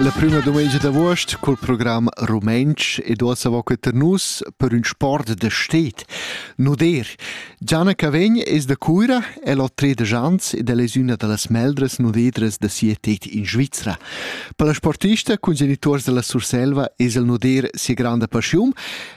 La prüma dumengia d'avuost cul program rumentsch ed uossa vo que tar nus per ün sport da sted, nuder. Gianna Cavegn es da Cuira, el ho tredisch ans ed el es üna da las meldras nudedras da sia tet in Svizra. Per la sportista cun genituors da la Surselva es il nuder sia granda paschiun,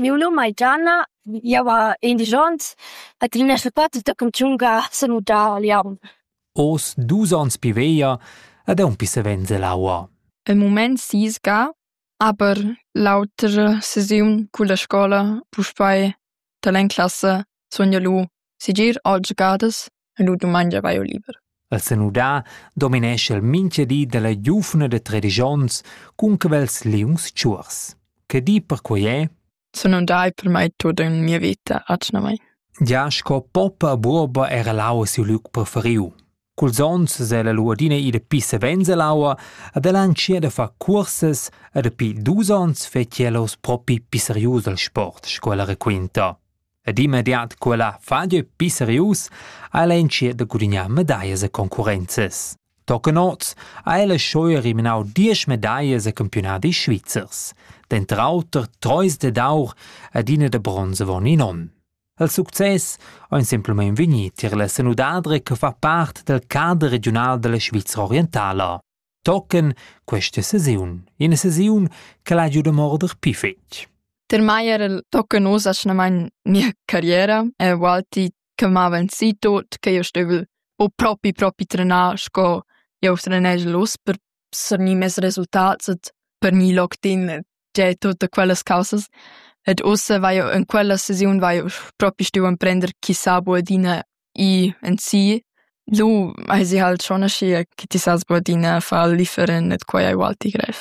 Miu num ei Gianna, jeu ha indisch onns ed il nostr pater tochen tschunca s'ha mudau a Glion. Oz dus onns pi veglia ed aunc pi savens ell'aua. Im mument sisga, aber l'autra sesiun culla scola puspei dall'en classa sun jeu lu segir allas gadas. e nu dumangia vaio liber. El senudà dominescha el mincha di da la giuvna da tredisch ons cun cavels liungs tschuors. Che di per quai è? Sun andai per mai tot in mia vita atgnamai. Ja sco poppa a buoba era l'aua siu luc preferiu. Culs ons se la luadina ida pi savens all'aua ad el anchia da far cursas e dapi dus ons fetg els propi pi serius al sport, sco ella raquinta. Ed immediat quella faglia pli serius ha ella entschiet da gudignar medaglias e concurrenzas. Tochen oz ha ella scheu eliminau diesch medaglias e campiunadis svizzers, denter auter treis dad aur ed ina da bronz avon in onn. Il success ein semplamein vegni tier la senudadra che fa part dal cader regiunal dalla Svizra orientala. tochen questa sesiun, ina sesiun che l'ha giu da morder pli fetg. Per mai era il tochen oz atgnamain mia carriera e Walti che m'aveva sì tot che io stevel o propi propi trenar sco eu trenegel los per sernir mes resultats et per mi locked in già tutte quellas causas ed ussa vaio in quella sesiun vaio propi stù emprender chi sa bu adina i en si. Lu hai sie halt schon aschia che ti sas bu adina far differen ed quai ei ualti grev.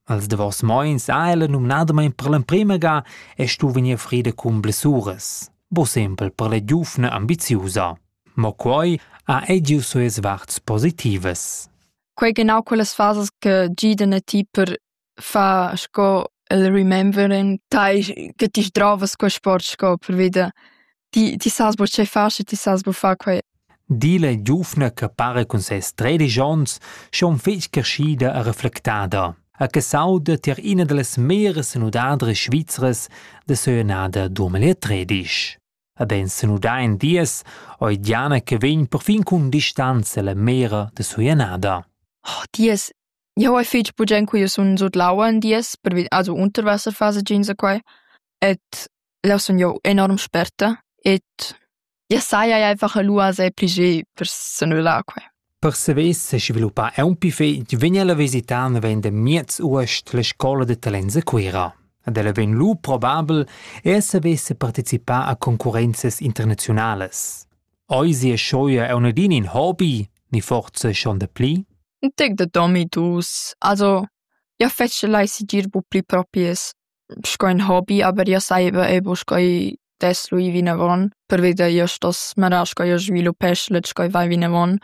Als davos moins ha ella numnadamain per l'emprima ga e stu vegnir frida cun blessuras, bo sempel per la giufna ambiziusa. Mo quai ha ei giu sues varts positivas. Quei genau quellas fasas che giden a ti per fa sco el remember in tai che ti sdrovas quei sport sco pervi da ti ti sas buca tgei far sche ti sas buca far quei. Di la giuvna che para cun ses tredisch onns schon fetg creschida e reflectada e che s'auda tier ina dallas meras senudadras svizras da seuenada 2013. E ben senuda in dies, oi Diana che vegn perfin cun distanza la mera de seuenada. Oh, dies Jau hai fich bugen quia sun sut l'aua ün dies pervi also Unterwasserphase giinsa quai ed leu sun jau enorm sperta ed ja saja einfach lù a se pli ge per s'annullar quai. Per savair sesviluppar aunc fich vegn ella visitar naven da miez uost la scoula da talents a Cuira. Ed ella vegn lu probabel er saver separticipar a concurrenzas internaziunalas. Eisi e schoia è unadin in hobby, ni forza schon dapli? Tec da domi dus. Also, ja fece lai sigir bu pli propies sco in hobby, aber ja saiva ebo sco des lui vinavon, perveda io stos marar sco io sviluppesch let sco vai vinavon.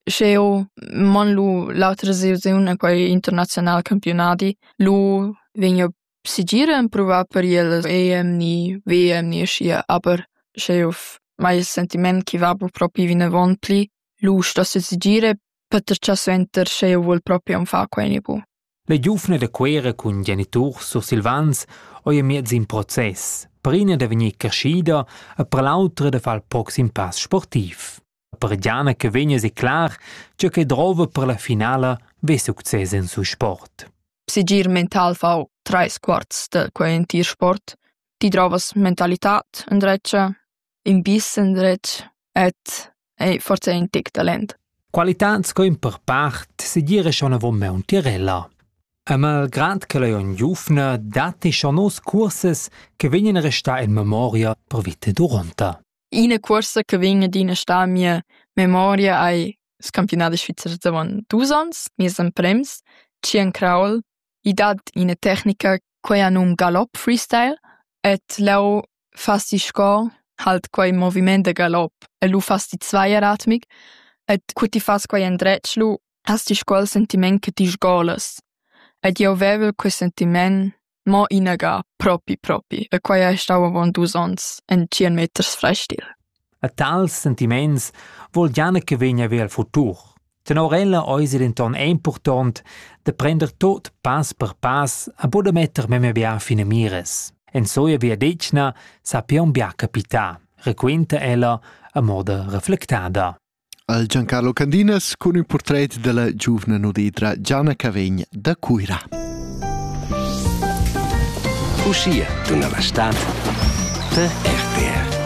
Sch'eu mon lu l'autra sesiun a quei international campionadi, lu vegn io Segir empruvar per iel l'EMI, VEMI aschia, aber sche jeu mai il sentiment ch'i va bu propi vinavon pli lusch da sesegire peter gia suenter sche jeu vul propi aunc far quei ni bu. Le giuvne da Cuera cun geniturs sursilvans ei miez in process, per ina da vegnir creschida e per l'autra da far il proxim pass sportiv. per Gianna che vegna declar tge che drova per la finala ve success en su sport. Segir mental fau trais quarts de quei entir sport. Ti drovas mentalitad in dretg, in bis in dretg et ei forse in tic talent. Qualitad sco in per part segir è schon avon me un tirella. E malgrad che lei on giufna, dati schon nos curses che vegnan restà in memoria per vite duronta. Ina cuorsa che vegn adina a star en mia memoria ei il campionadi svizzer d'avon dus onns, nies emprems, Skiern Kraul. I dat ina tecnica quei ha num Galopp Freestyle ed leu fas ti sco halt quei moviment da galopp e lu fas ti zweieratmig ed cu ti fas quei endretg lu has ti sco il sentiment che ti sgolas. Ed jeu vevel quei sentiment Mo inaga, propi propi, e quei ei stau avon dus onns, en tschien meters frestil. A tals sentiments vul Jana che vegna ver il futur. Tenor ella eis ei denton impurtont da prender tot pass per pass a buca metter memia bia finamiras. En soia viadetgna sappion bia capitar, requinta ella a moda reflectada. al Giancarlo Candinas cun ün purtret della giuvna nudidra Gianna Cavegn da Cuira. Uschia, dunna Bastat, per RTR.